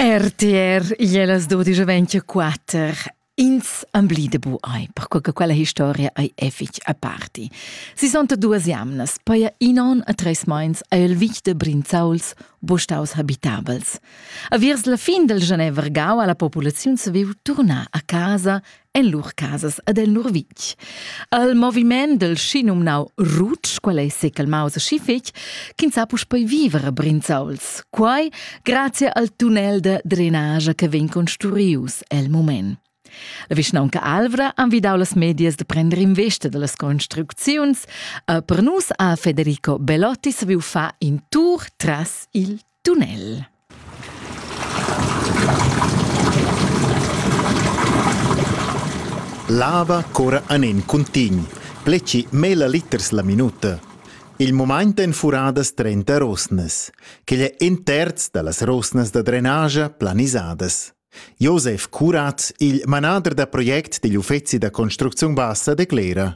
RTR ie las 12.24 ins ambli de bu ai, perque che quella historia ei effic a parti. Si son duas jamnas, poi in on a treis meins a el vic de Brinzauls, bustaus habitabels. A viers la fin del Genevergau alla populaziun se viu turnar a casa en lur casas ed en lur vitg. Al moviment del schinumnau Rutsch, quel ei secalmaus e schifig, ch'ins ha puspei viver a Brinzauls. Quai grazie al tunnel de drenage che vegn construius el moment. La vischnaunca Alvra ha envidau las medias de prender investa dallas construcziuns e per nus ha Federico Belotti saviu far in tour tras il Dunel. Lava cura anen cuntign. Pleci mela liters la minuta. Il moment en furadas 30 rosnas, che è in terz da las rosnas da drenagia planisadas. Josef Curat, il manader da project digl uffeci da construcziun bassa, declera.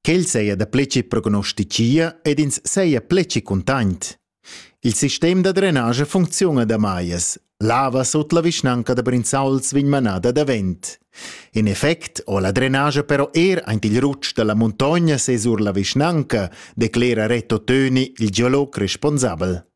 Quel seia da pleci prognosticia ed ins seia pleci cuntaint. Il sistem da drenage funcziuna da maias. Lava sut la vischnanca da Brinzauls vegn manada davent. In effect ho la drenage però er aint il rutsch da la muntogna sesur la vischnanca, declera Reto Töni, il geolog responsabel.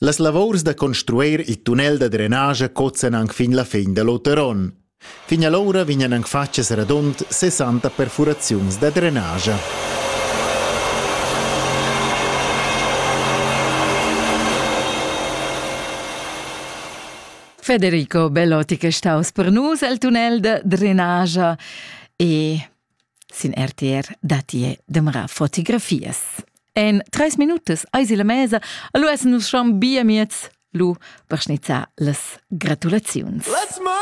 Las lavurs da construir il tunnel da drenage cozzan anc fin la fin da l'oter onn. Fin allora vegnan anc fatgas radund 60 perfuraziuns da drenage. Federico Bellotti che è staus per nus el tunnel da drenage e Sin RTR datti e demera fotografias. En treis minutas eis la mesa, lu essen nus schon bia miez, lu per schnizzar las gratulaziuns. Let's move